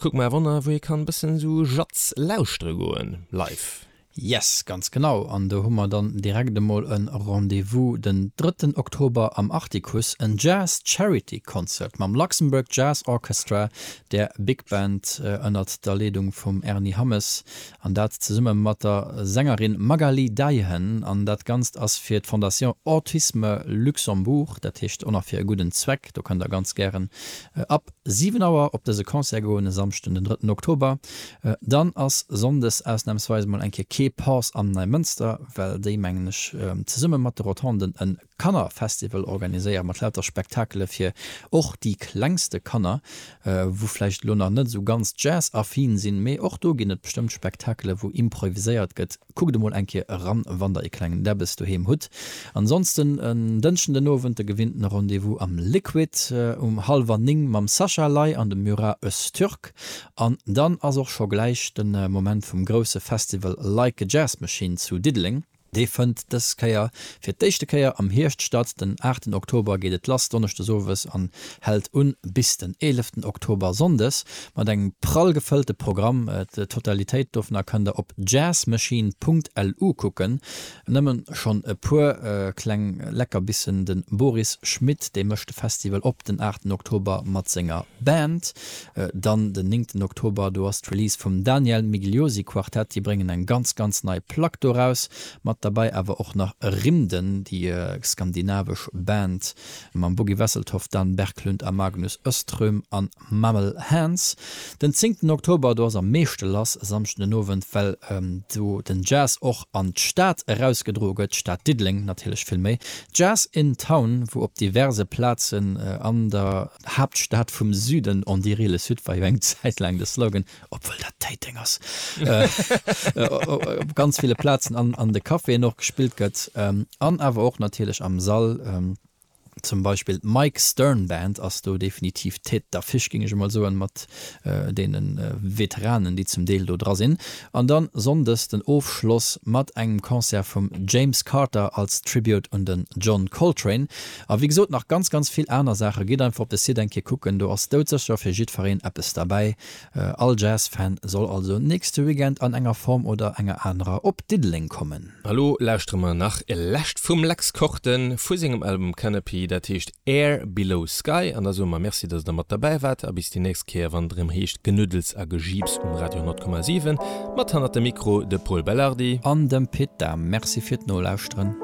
Kuck mer wonner wou ee kann bëssen sou Jazz lauschtere goen live. Yes, ganz genau, an do hu mer dann direkt emol en Rendez-vous den drëtten Oktober am Artikuss, en Jazz Charity Concert mam Luxembourg Jazz Orchestra, der Big Band ënnert der Leedung vum Erny Hammes, an dat zesumme mat der Sängerin Magaly Deihen, an dat ganzt ass fir d'Fondation Autisme Luxembourg, dat heescht och nach fir e gudden Zweck, do kënnt der ganz gären ab. 7 Auer op dëse Concert goen, e Samschden den 3 Oktober. Dann ass Sonndes ausnahmsweis mol eng Kéier kee Pass am Neimënster, well déi mengen ech zesumme mat de Rotonden en Kannerfestival organiséieren, mat lauter Spektakele fir och déi klengste Kanner, wou vläicht elo nach net esou ganz Jazz-affin sinn, mee och do ginn et bestëmmt Spektakele wou improviséiert gëtt. Kuckt emol eng Kéier eran, wann der ee klengen Debbes doheem hutt. Ansonsten en Dënschden den Owend de gewinnten Rendez-vous am Liquid um hallwer 9 mam Sascha Ley an dem Murat Öztürk. An dann ass och scho gläich de Moment vum grousse Festival Like a Jazz Machine zu Diddeleng. Dee fënnt dës Kéier fir d'éischte Kéier am Hierscht statt. Den 8 Oktober geet et lass Donneschdes owes an hält un bis den 11 Oktober Sonndes. Mat engem prall gefëllte Programm, d'Totalitéit dovunner kënnt der op jazzmachine punkt lu kucken. Nëmmen schonn e puer kleng Leckerbissen, den Boris Schmit, dee mécht de Festival op, den aachten Oktober mat senger Band, dann den néngten Oktober, do ass d'Release vum Daniel Migliosi Quartet, déi bréngen eng ganz ganz nei Plack do raus, mat derbäi awer och nach Rimden, déi skandinavesch Band mam Buggy Wesseltoft, Dan Berglund a Magnus Öström an. Mammal Hands, den zéngten Oktober, do ass am meeschte lass e Samschden den Owend, well do den Jazz och an d'Stad erausgedroe gëtt, d'Stad Diddeleng natierlech vill méi. Jazz in Town, wou op diverse Plazen an der Haaptstad vum Süden, on dirait le Sud war jo eng Zäit laang de Slogan, obwuel dat Téiteng ass, op ganz ville Plazen an de Caféen och gespillt gëtt an awer och natierlech am Sall. Zum Beispill d'Mike Stern Band ass do definitiv d'Tête d'affiche, géing ech emol soen, mat deene Veteranen, déi zum Deel do dra sinn. An dann Sonndes den Ofschloss mat engem Concert vum James Carter als Tribute un den John Coltrane. A wéi gesot, nach ganz, ganz vill aner Saachen. Gitt einfach op de Site eng Kéier kucken, do ass doudsécher fir jiddfereen eppes derbäi. All Jazz Fan soll also nächste Weekend an enger Form oder enger anerer op Diddeleng kommen. Elo lauschtere mer nach e lescht vum Lex Korten vu sengem Album Canopy, dat heescht Air Below Sky, an da soe mer Merci dass der mat derbäi waart, a bis déi nächst Kéier wann et erëm heescht Genuddels a Gejiips um Radio 10,7 mat hannert dem Mikro de Pol Belardi. An dem Pit Dahm. Merci fir d'Nolauschteren.